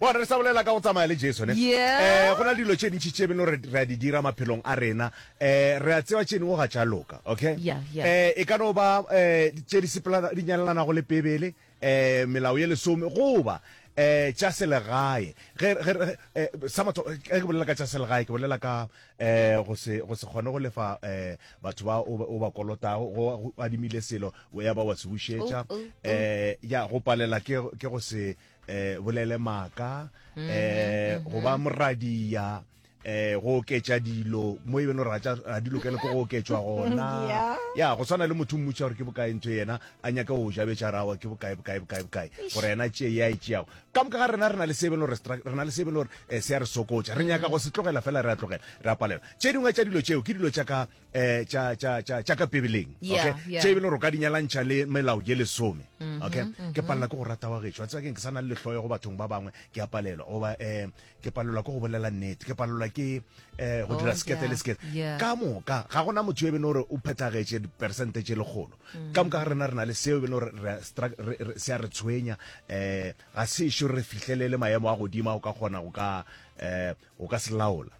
Bona, re sa bolela ka go tsamaya le Jesu, ne? Yeah. Eh, go na le dilo tše ntši tše beno re re a di dira maphelong a rena. Eh, re a tseba tše dingwe ga tša loka, okay? Yeah, yeah. Eh, e ka no ba eh tše di sepelana di nyalelanago le Bibele, eh melao ye lesome goba eh tša selegae. Ge ge re eh sa matho ge ke bolela ka tša selegae ke bolela ka eh go se go se kgone go lefa eh batho ba o ba- o ba kolotago go go adimile selo o ya ba wa se bušetša. Oh, oh, oh. Eh ya go palela ke ke go se eh bolele maka mm-hmm, eh mm-hmm. go ba moradia eh go oketša dilo mo e beng gore ga di lokele ko go oketšwa gona ya go tshwana le motho mmutša gore ke bokae ntho yena a nyaka go jabetša rawa ke bokae bokae bokae bokae gore yena tšee ya e tšeago ka moka ga rena re na le se e beng gore re na le se e beng gore eh, se ya re sokotša re nyaka go se tlogela fela re a tlogela re a palela tše dingwe tša dilo tšeo ke dilo tša ka eh tša tša tša tša ka bibeleng Yeah, okay yeah. tše e bile gore o ka di nyalantšha le melao ye lesome okay ke palela ke go rata wa gešo a tseba keng ke sa na le lehloyo go bathong ba bangwe ke a palelwa goba um ke palelwa ke go bolela nnete ke palelwa ke um go Oh, dira sekete yeah, le sekete yeah. ka moka ga gona motho yo e bene gore o phethagetše diperesente tše lekgolo ka moka ga rena re na le seo e bene gore re a stra- re- re- se a re tshwenya um ga se ešo re fihlelele maemo a godimo a o ka kgona go ka um O ka se laola.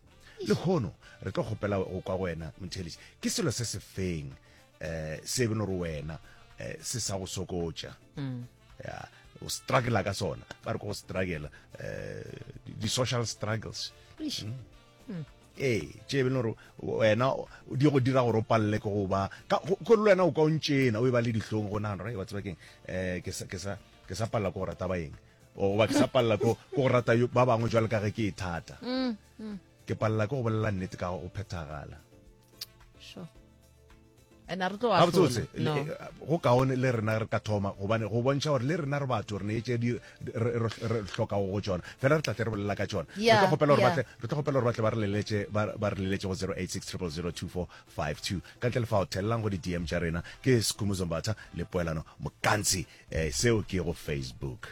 Lehono, re tlo kgopela go kwa go wena, Motheeletši. Ke selo se se feng eh, se beno re wena eh, se sa go sokotša? Mm. Ya, o struggle ka sona. Ba re ko go struggle, eh, di- di-social struggles. Eish. Mm. ee tše beno re wena o- di go dira gore o palele ke go ba ka go- ko le wena o ka o ntšena o e ba le dihlong go nagana gore wa tseba keng um ke sa- ke sa ke sa palela ko go rata baeng goba ke sa palela ko go rata ba bangwe jwale ka ge ke e thata mm, mm. ke palela ke go bolela nnete ka go phethagala gabotsebotse eh, go kaone le rena re ka thoma gobane go bontšha gore le rena re batho re ne etse re tlhoka go tsona fela re tlatle re bolela ka tsona re tlo kgopela gore batle ba re leletse go 086 000 24 52 ka ntle le fao thelelang go di dm tša rena ke skhumbuzo mbatha le poelano mokantsi eh seo ke go facebook.